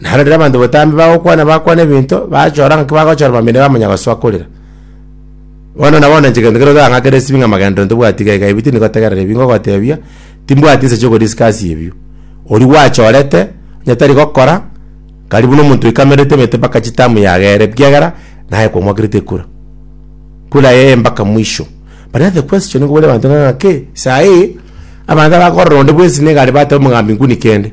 Naro riria abanto botambe bagokwana bakwana ebinto, bachora ng'aki bagochora bambirire bamanya gosoa korera. Bono nabo na inche gento keria otang'akera esibie ng'a magenderero ntobwati iga iga ebi tindi gotegerera ebi ngogotebia, timbwati nsa chia ogo discuss ebio. Oria gwachorete, onye tari gokora, kari buna omonto oikamerete emete mpaka chitamu yaga ere ekiagera naye kwamokerete ekura. Kura eye mpaka mwisho. But now the question igo bore abanto ng'a ng'aki, saii, abanto abakorora onde bwensi nigo are bateba omogambi nkuni kende.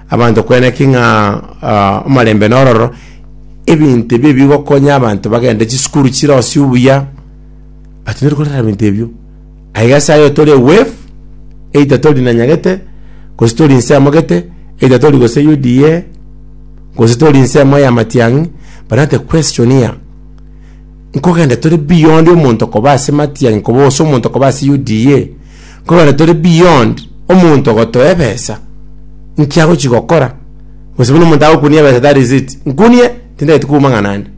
Abanto kwena ki ng'a omarembe nororo, ebinto ebi ebigokonya abanto bagende chisukuru chire ose obuya, batindire korera ebinto ebio. Aiga ase ayo tore wave, either tori na Nyagete, gose tori inse emogete, either tori gose UDA, gose tori inse emo ya Matiang'i, but now the question here, nkogenda tore beyond omonto koba ase Matiang'i koba ase omonto koba ase UDA, Kogera tore beyond omonto ogotoa ebesa nki agochi gokora gose buna omonto agokunia ebesa that is it nkunie tindageti kouma ng'a nande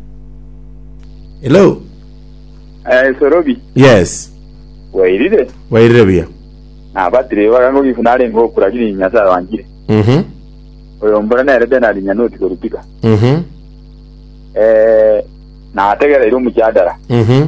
hello Eh, Sorobi, yes wairire? wairire buya Nabatire ibaga ngo gifu nare ngo okura giri Nyasaye wangire. mhm Oyo mbura nere de nari nyanoti korutika. mhm Eh, nategereire omujadara. mhm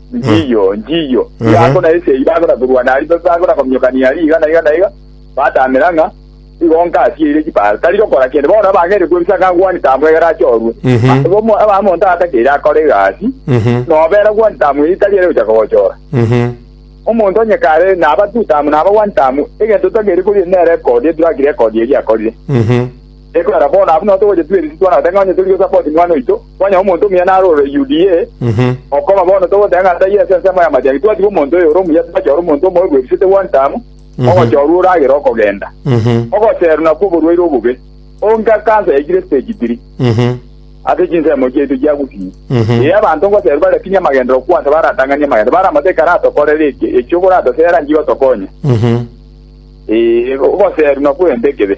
Njiyo, njiyo. Ehe. Yako na esegi bagora korwana aria, ba- bagora kominyokania aria iga na iga na iga, batamera ng'a igo nkasieire chipara. Tari gokora kende, bono abang'aini kwebisa ng'a gwani tamwegera achorwe. Mhm. A- omo- aba- omonto atakeire akore egasi, Mhm. nobera gwani tamweri tari ere gochaka gochora. Mhm. Omonto onye kare naba tu tamu, naba gwani tamu, egento totakeire koria nere record, track record eria akorire. Mhm. Ekorera bono abwo nao togochetiwa erisi twanagoteba ng'a onye tori Yosafati mwana oito, kwanyora omonto omuya narorire Yudia, okoma bono togoteba ng'a taiyo ase ensemo y'amache ake twatiga omonto oyo ore omuya twachora omonto omobe bw'erisete one time, ogochorwa oragere okogenda. Ogocherwa nakwo oborwaire obobe, onga cancer yaikire stage three ase chinsemo chiaito chia gusii. Ee, abanto ngoserwe bare kinya amagenderero kwansa baratang'anie amagendo, bare amato ekaratokorere eke, eki okoratosera nchigotokonya. Ee, ogoserwa nakwo egento ekebe.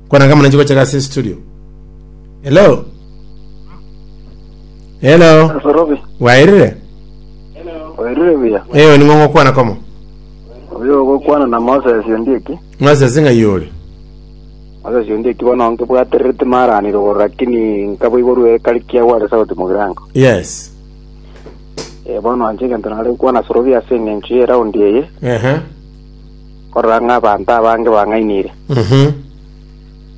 Kwana kama nanchi gocha gase studio. Hello. Hello. Asorobi, Wairire? oirire buya. Eyo ni ng'ongo kwana komo. Oyo ogokwana na Moses Ondieki. Moses ng'a yori. Moses Ondieki bono nkebwaterere timaranire igoro lakini nkaboiborwa ekari kiagwa ase sauti mogirango. Yes. Eh, bono inche egento nare gokwana Asorobi ase eng'encho ye round eye. Ehe. korora ng'a abanto abange bang'ainire.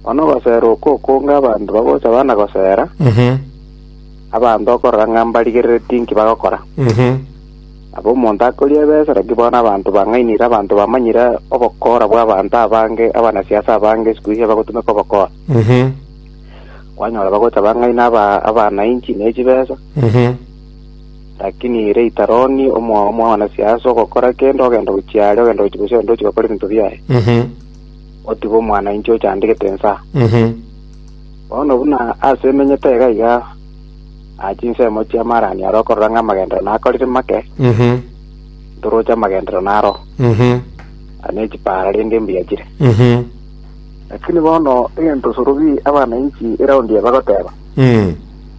Bono ogosera oko okonge abanto bagocha bana gosera abanto okorora ng'a mbarigerereti inki bagokora. Nabo omonto akoria ebesa naki bono abanto bang'ainire abanto bamanyire obokora bw'abanto abange abanasiasa abange sikuhizi abagotumeka obokora. Kwanyora bagocha bang'aina aba- abanainchi ne chibesa. Lakini ere Itaroni, omwaomo bw'abanasiaya, ase ogokora kende, ogenda gochia are, ogenda gochia gose onde ochia gokora ebinto biaye, Mhm. otiga omwana inche ochandegete ensa. Mhm. Bono buna ase emenyete iga iga, na chinsemo chi'amaarani aro okorora ng'a amagenderero nakorire make, Mhm. ntoroche amagenderero naro, Mhm. na nechipaara rende mbuya chire. Mhm. Lakini bono egento sorobi abana inchi eraundi eye bagoteba, Mm.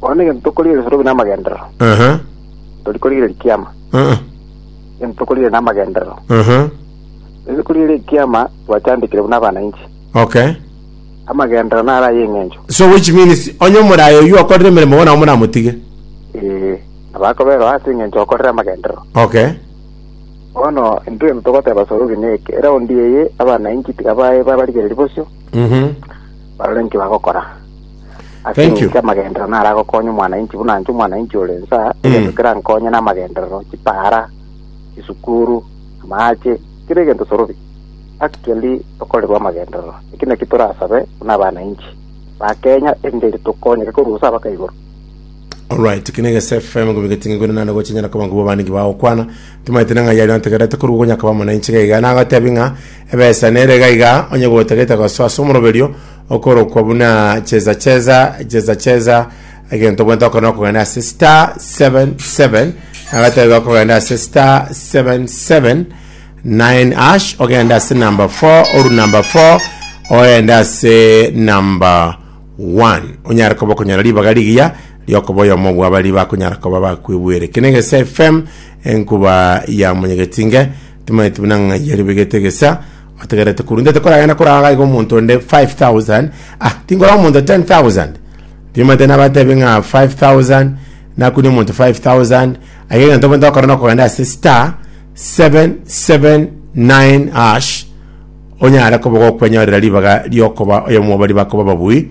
Bono negento tokorigereria sorobi namagenderero, Aha. tori korigereria ekiama. Aha. Egento tokorigereria namagenderero, Aha. tori korigereria ekiama twachandekire buna abana inche. Okay. Amagenderero naro aye eng'encho. So which means onye omoraye oyio okorire emeremo bono nabo moramotige. Ee, nabakoberwa ase eng'encho okorire amagenderero. Okay. Bono intwe egento togoteba sorobi neke, eraundi eye abana inche tiga bae babarigereria bosio, Mhm. barore inki bagokora. Ase Thank you. eng'encho amagenderero naro agokonya omwananchi buna inche omwananchi ore nsa egento kerankonye na amagenderero chipara chisukuru amache kera egento sorobi actually tokorerwa amagenderero eki naki torasabe buna abananchi ba kenya erinde tokonyeke korwa gose abaka igoro Alright, kine gese FM gobe getinge gure nane gocha nyana kabangu baba ningi bawo kwana. Tumaite na ngayari na tegerete kuru gonya kaba mwana inchi gaiga na agatebi nga ebesa nere gaiga onye gotegete goso aso moroberio okorokwa buna cheza cheza cheza cheza egento bwente okona okogenda ase star 77 agataiga okogenda ase star 77 9 ash ogenda ase number 4 oru number 4 oenda ase number 1 onyare koba okonyora ribaga rigiya riokoba oyomo bwa bari bakonyara koba bakwibwere kinege fm enkuba ya monyegetinge timaeti buna ng'ai yaribegete gesa Otegerete korwa intwe tokoragenda koraga iga omonto onde 5000 ah tinkoraga omonto 10000 tiomanyete nabatebi ng'a 5000 nakunia omonto 5000 aiga egento omonto okora nokogenda ase star 779 hash onyare koba gokwenyorera ribaga riokoba oyomo bwa baria bakoba ababui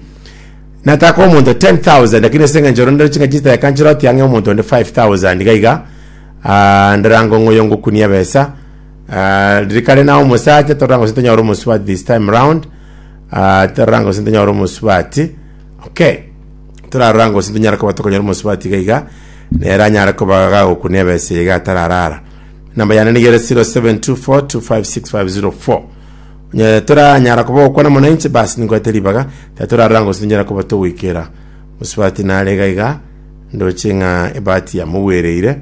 nataka omonto 10000 lakini ase eng'encho ore ndore chingaki chiteka nchire otiang'e omonto onde 5000 iga iga ah ndore ango ng'oyo ngokunie ebesa. Ah, riria kare naye omosacha torora ngose tonyore omosubati this time round Ah, torora ngose tonyore omosubati okay torarora ngose tonyara koba tokonyora omosubati iga iga nere anyare koba gagokuna ebesa iga atararara namba yane nigere 0724256504 Nye- toranyara koba gokwana mwananchi basi ninkwete ribaga ta torarora ngose tonyara koba togoikera mosubati nare iga iga ndoche ng'a ebati yamogwereire